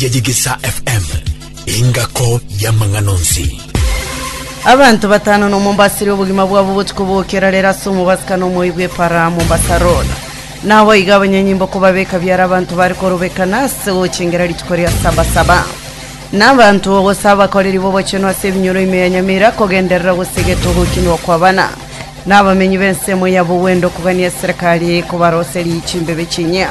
ya Yigisa FM, engako y'amang'ana onsi. Abanto batano na omombasiri obogima bwabo botuko bokera rero ase omobasikano omoyi bw'epara Mombasa Road. Nabo iga abanyanyimbo kobabeka biara abanto bare korobekana ase gochengera rituko ria saba saba. Na abanto gose abakoreri b'obochenu ase ebinyoro ime ya Nyamira kogenderera gose egeto gokinwa kwabana. Na abamenyi b'ensemo ya Bugwendo kogania eserekari kobaroserie chimbebe chinyia.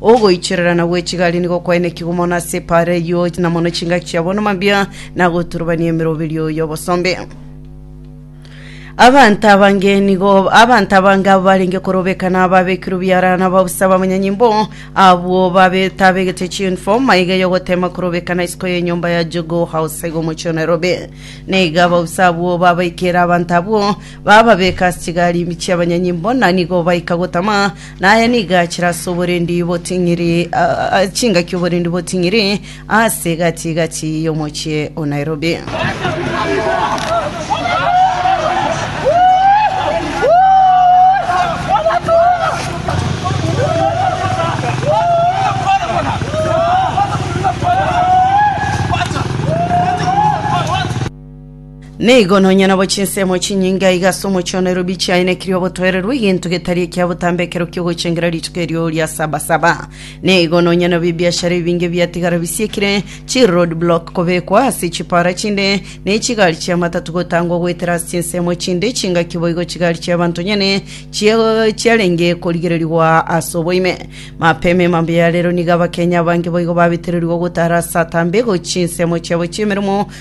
Ogoicherera na gwechigari nigo kwainekigwe mono ase epaara eyio, na mono chingaki chiabo namambia, na goturubania emeroberio y'obosombe. Abanto abange nigo abanto abange abo barenge korobekana babekirwe biara na babusa bamanyanyimbo abwo babe tabegete chiuniform maiga yogotema korobekana isiko y'enyomba ya Jogoo House iga omochie o Nairobi. Neiga ababusa abwo babaikera abanto abwo Bababeka ase chigari ime chi'abanyanyimbo, na nigo baika gotama, na aya nigo achire ase oborendi boting'iri, ah, chingaki oborendi boting'iri ase gati-gati y'omochie o Nairobi. Nigo nonya nabo chinsemo chinyinge aiga ase omochie o Nairobi chiaenekirie obotoererwa egento getari ekia botambe ekero kiogochengera rituko erio ria sabasaba. Nigo nonya nabo ebiashara ebinge biatigara bisiekire, chi road block kobekwa ase chipara chinde, ne chigari chia matatu gotangwa goetera ase chinsemo chinde chingaki boigo chigari chia banto nyene chia- chiarenge korigererigwa ase oboime. Mapema emambia ya rero nigo Abakenya abange boigo babetererigwe gotara ase atambe gochia ensemo chiabo chiemeremo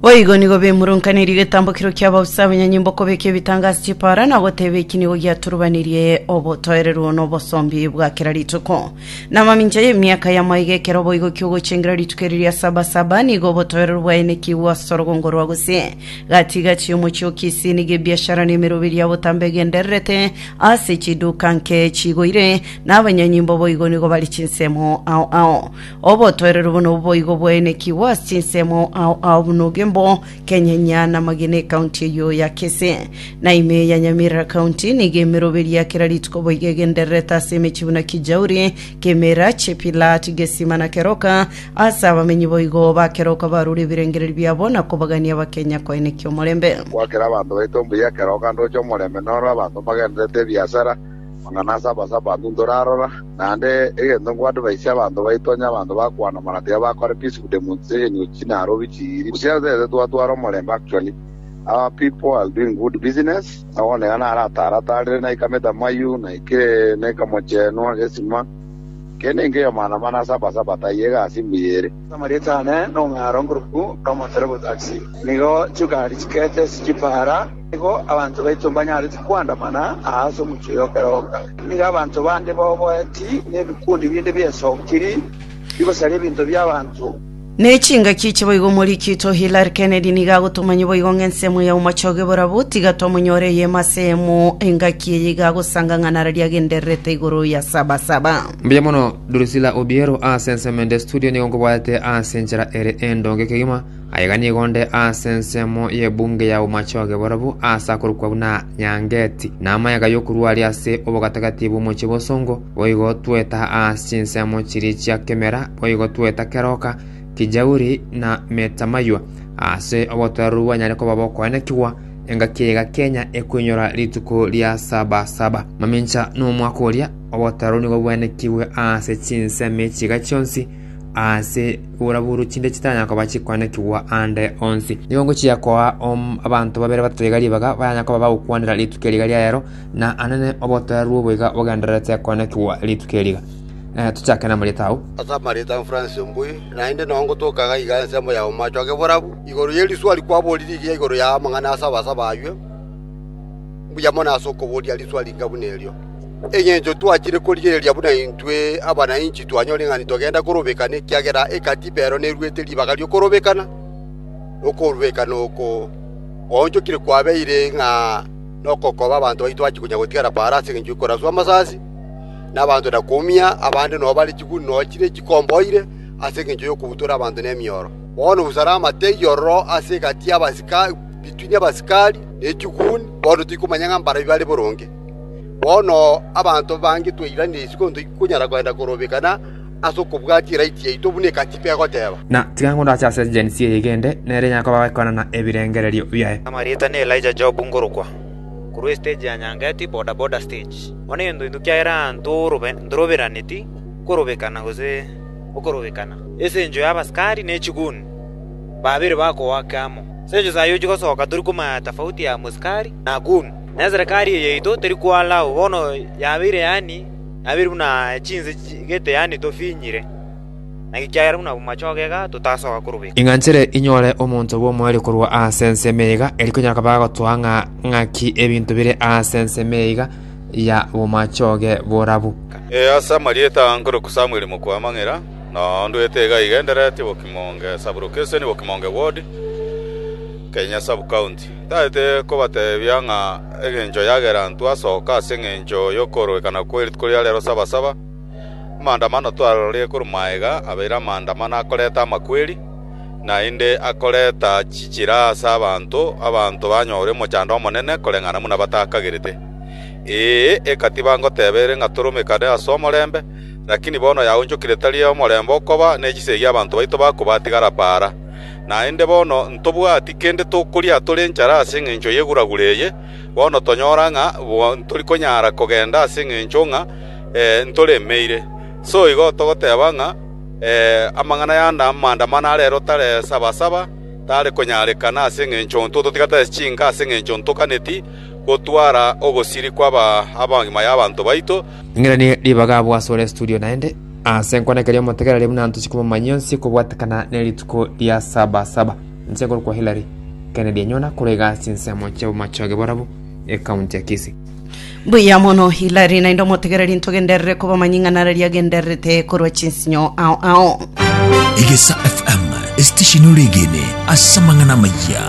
Boigo nigo bemurunkaneiri getambokero kia bausa abanyanyimbo kobeka ebitangaso chipara na goteba eki nigo giaturubanirie obotoereru na obosombi bwa kera rituko. Na mamincha y'emiaka ya maiga ekero boigo kiogochengera rituko eri ria saba saba nigo obotoereru bwaenekigwe ase orogongo rwa gose. Gati gati y'omochie o Kisii nigo ebiashara na emeroberi ya botambe egendererete ase chiduka nke chigoire na abanyanyimbo boigo nigo bari chinsemo ao ao. Obotoereru buna obo boigo bwaenekigwe ase chinsemo ao ao buna Ogembo, Kenyenya, na Magina Ekaunti eyio ya Kisii. Na ime ya Nyamira County nigo emeroberi ya kera rituko boigo egendererete ase emechie buna Kijauri, Kimira, Chepilat, Gesima na Keroka ase abamenyi boigo ba Keroka barure ebirengererio biabo na kobagania Abakenya koenekia omorembe. Goakera abanto baito mbuya ekero oganda oche omorembe noro abanto mbagendererete ebiasara. Amang'ana ase Abasabato ntorarora, naende egento nkoadvaise abanto baito onye abanto bakwana mana tibabakore peaceful demonstration of chinarwori chiiri gose ase ase twatwara omorembe actually our people are doing good business aoneka nare ataratarire naikamete amayiu naikire naika mochenwa gesima kende nkeyo mana mana ase Abasabato ayio egasi mbuya ere. Ase amarieta aane, nong'ara onkoroku Thomas Robots Axim. Nigo chigari chikete chichipara. Nigo abanto baito mbanyareti koandamana aase omochie oyo kera onga. Nigo abanto bande baoboeti, na ebikundi binde bi'esokiri bigosaria ebinto bi'abanto. Ne chingaki echi boigo omori kito Hillary Kennedy nigo agotomanya boigo ng'a ensemo ya omochoge borabwo tiga tomonyore eyemo ase eyemo engaki eye iga agosanga ng'a narari agendererete igoro ya saba saba. Mbuya mono Drusilla Obiero ase ensemo ende studio nigo nkobwate ase enchera ere endonge kegima. Aiga nigo onde ase ensemo y'ebunge ya Bomachoge borobwo aase akorokwa buna Nyangeti, na amaega y'okorua aria ase obogatagati bw'omochie bosongo, boigo tweta aase chinsemo chiria chia Kemera, boigo tweta Keroka, Kijauri, na Metamaywa. Aase obotoereru bwanyare koba bokoenekigwa, engaki eyaiga Kenya ekoinyora rituko ria saba saba. Mamincha nomwaka oria, obotoereru nigo bwenekigwe aase chinsemo echiga chionsi, Aase borabwo chinde chitanyara koba chikwanekigwa aande onsi. Nigo ngochia koa abanto babere batato iga ribaga, baranyare koba bagokwanera rituko eri iga ria rero, na anene obotoeru obo iga bogendererete koanekigwa rituko eri iga. Tochake namarieta agwo. Ase amarieta a Francis Ombui, naende nao ngotoka iga iga ensemo ya omoachoge borabu, igoro ye riswa rikwaborire iga igoro ya amang'ana asaba asaba ayio, mbuya mono ase okoboria riswa ringa buna erio. Engencho twachire korigereria buna intwe abana inchi twanyore ng'a nitogenda korobekana, ekiagera ekatiba ero neruete ribaga ri'okorobekana, na okorobekana oko gwaonchokire kwabeire ng'a nokokoba abanto baito bache konya gotigara paaro ase engencho y'okoraswa amasasi, na abanto na koumia abande noo bare chiguni noo chire chikomboire ase engencho y'okobutora abanto nemioro. Bono busana amategi ororo ase egati y'abasika between abasikari ne chiguni, bono tikomanya ng'a mbarabwo bare boronge. Bono abanto bange twairanetie isiko titokonyara kogenda korobekana ase okobwatia eraiti yaito buna Ekatiba egoteba. Na tiga ngondache ase egensi eye egende, nere Yakobo agoekoranana ebirengererio biaye. Amarieta ne Elijah Job ngorokwa korwa estage ya Nyangeti boda boda stage. Bono egento into kiagera aanto ntoroberaneti korobekana gose okorobekana. Ase enchwa ya abasikari ne chiguni babere bakogoaka amo. Ase enchwa sayi ochigosoka tori komanya tafauti ya mosikari na goon. na eserekari eye yaito teri kwalao bono yabeire yaani, yabeire buna chinse chigete yaani tofinyire, na ekiagera buna bw'amachoge iga totasoka korwa iko.” Ing'anchere inyore omonto bw'omoerio korwa aase ensemo eye iga, eri konya bakaba bagotoa ng'a ng'aki ebinto bire aase ensemo eye iga ya bw'amachoge borabu. Ee, ase amarieta aa nkoroku Samueli Mokuamang'era, na ondwete iga igendereti Bokimoonge Sub-Location, Bokimoonge Ward, Kenya Sub-County. Tagete kobateebia ng'a egencho yagera intwe asoka ase engencho y'okoororekana kwe rituko ria reero saba-saba. Amaandamano twarorie korwa magega abeire amaandamano akoreta amakweri, naende akoreta chichira ase abanto, abanto banyore omochando omonene koreng'ana buna batakagerete. Ee, egatiba ngoteba ere ng'a toromekane ase omorembe, lakini bono yaonchokire tari omorembe okoba, ne chisegi abanto baito bakobatigara paara. Naende bono ntobwati kende tokoria tore enchara ase engencho y'eguragura eye, bono tonyora ng'a ntori konyara kogenda ase engencho ng'a ntoremeire. Soigo togoteba ng'a amang'ana yande amandamano arero tare saba saba tare konyarekana ase engencho intwe totiga tore chinka ase engencho ntoganeti gotwara ogosiri kw'abagima y'abanto baito, Ing'eranie ribaga abwo asore studio naende ase nkwana keria omotegereri buna ntochi komomanya onsi kobwatekana ne rituko ria saba saba nse korokwa Hillary Kennedy enyona korega ase ensemo chia bomachoge borabu e county ya Kisii Mbuya mono Hilary naende omotegereri ntogenderere kobamanyi ng'a nara riagendererete korwa chinsinyo ao ao. Egesa FM, esitesheni oregene ase amang'ana amaya.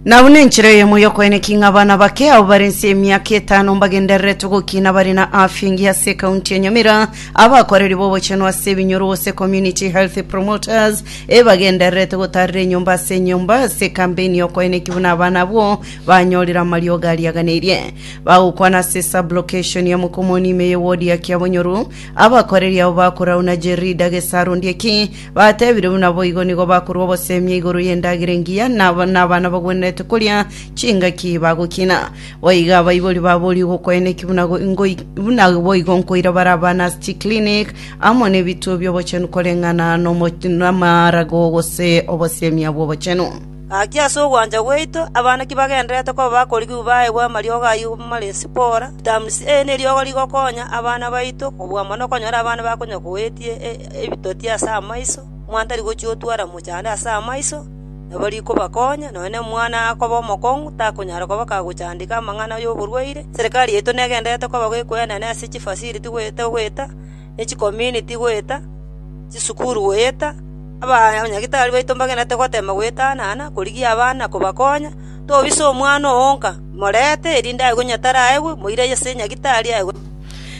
Na buna enchera eyemo y'okoeneka ing'a abana bake abwo bare inse y'emiaka etano mbagendereretwe gokina bare na afya engiya ase ekaunti ya Nyamira, abakoreri b'obochenu ase ebinyoro gose community health promoters ebagendererete gotaarera enyomba ase enyomba ase ekampeini y'okoeneki buna abana abwo banyorire amariogo ariaganeirie. Bagokwana ase sub-location ya Mokomoni ime y'ewodi ya Kiabonyoru, abakoreri abo bakorauna Jerida Gesaru Ndieki, Batebire buna boigo nigo bakorua obosemi igoro y'endagera engiya, na abana bagwenerete koria chingaki bagokina. Boigo abaibori baboria ogokoena eki buna buna boigo nkoira bare abana ase chiklinik amo nebituo bi'obochenu koreng'ana n'amarago gose obosemi bw'obochenu. Gaki ase ogwancha gwaito, abana ki bagendererete koba bakorigigwa baegwe amariogo ayio mare sipora, vitamins A, neriogo rigokonya abana baito kobua mono okonyora abana bakonya kowetie ebitoti ase amaiso, omwana tari gochia gotwara mochando ase amaiso, nabo rikobakonya, nonya na omwana akoba omokong'u takonyara koba kagochandeka amang'ana y'oborwaire. Serikari yaito negendererete koba goekoenana ase chifaciliti goeta goeta, ne chikominiti goeta, chisukuru goeta, abanyagitari baito mbagendererete goteema goetanana korigia abana kobakonya, tobisa omwana oo onka, morente erinde aye konya taraegwe, moire ase nyagitari aye.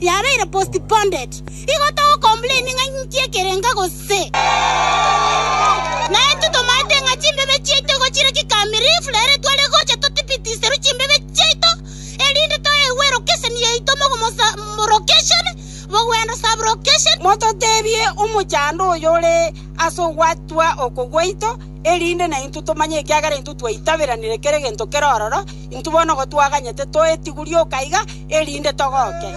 yabeire postponed, igo togocomplaini ng'a inki ekerenga gose. Naintwe tomaete ng'a chimbebe chiaito igo chire kikamirifu, na ere tware gocha totibitiserwe chimbebe chiaito, erinde toegwe erocation yaito mogomosa-mrocation, mogwenda subrocation, Mototebie omochando oyore ase ogwatwa oko gwaito, erinde naintwe tomanye ekiagera intwe twaitaberanire kere gento kere ororo, Intwe bono igo twaganyete toetigure oka iga, erinde togoke.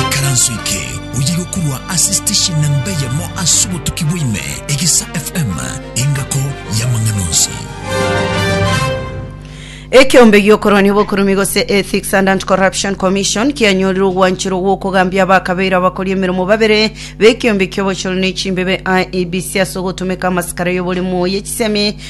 Ikaranso eke oyegokurwa ase station namba eyemo ase obotuki bwa ime, Egesa FM, engako y'amang'ana onsi. Ekeombe giokorwania obokurumi gose Ethics and Anti-Corruption Commission kianyorire ogwancherwa gw'okogambia abakabeire abakori emeremo babere b'ekeombe ki'obochori ne chimbebe IEBC ase ogotomeka amasikara y'oboremu y'echisemi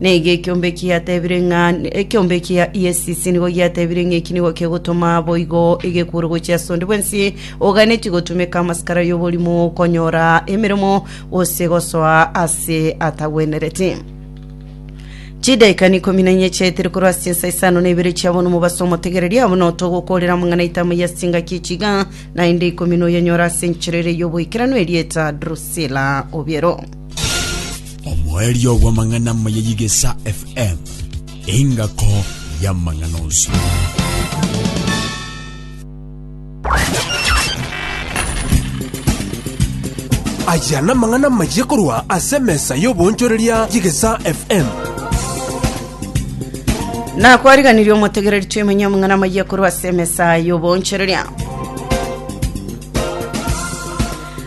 Nigo ekiombe eki giatebire ng'a ekiombe eki Yesisi nigo giatebire ng'a eki nigo kegotoma boigo egekure gochia ase onde bwensi oganetie gotumeka amasikara y'oborimo konyora emeremo gose gosoa ase atagwenereti. Chidaikani ikomi na inye chiaetire korwa ase chinsa isano na ibere chia bono mobaso omotegereria abo notogokorera amang'ana aito amaya ase engaki echiga naende ikomi noyanyora ase enchera ere y'oboikeranu erieta Drusila Obiero. Omoerio bw'amang'ana amaya y'Igesa FM, engako y'amang'ana onsi. Aya namang'ana amaya korwa ase emesa y'oboonchoreria y'Igesa FM. nakwariganirie omotegereri twemenye omong'ana amaya korwa ase emesa y'oboonchoreria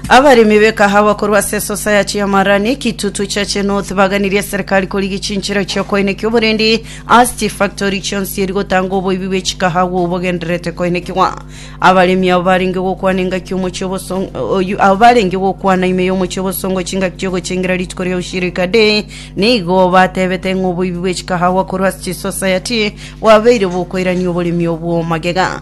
Abaremi b'ekahawa korwa ase esosayati y'amarani ekitutu chia Chenooth baganirie eserikari korigia chinchera chia koenekia oborendi ase chifactori chionsi eri gotanga oboibi bwe chikahawa obogendererete koenekigwa. Abaremi abo barenge gokwana engaki omochie obosongo oyu abo barenge gokwana ime y'omochie obosongo chingaki chi'ogochengera rituko ria Ushirika Day nigo batebete ng'a oboibi bwe chikahawa korwa ase chisosayati bwabeire bokoirania oboremi obwo magega.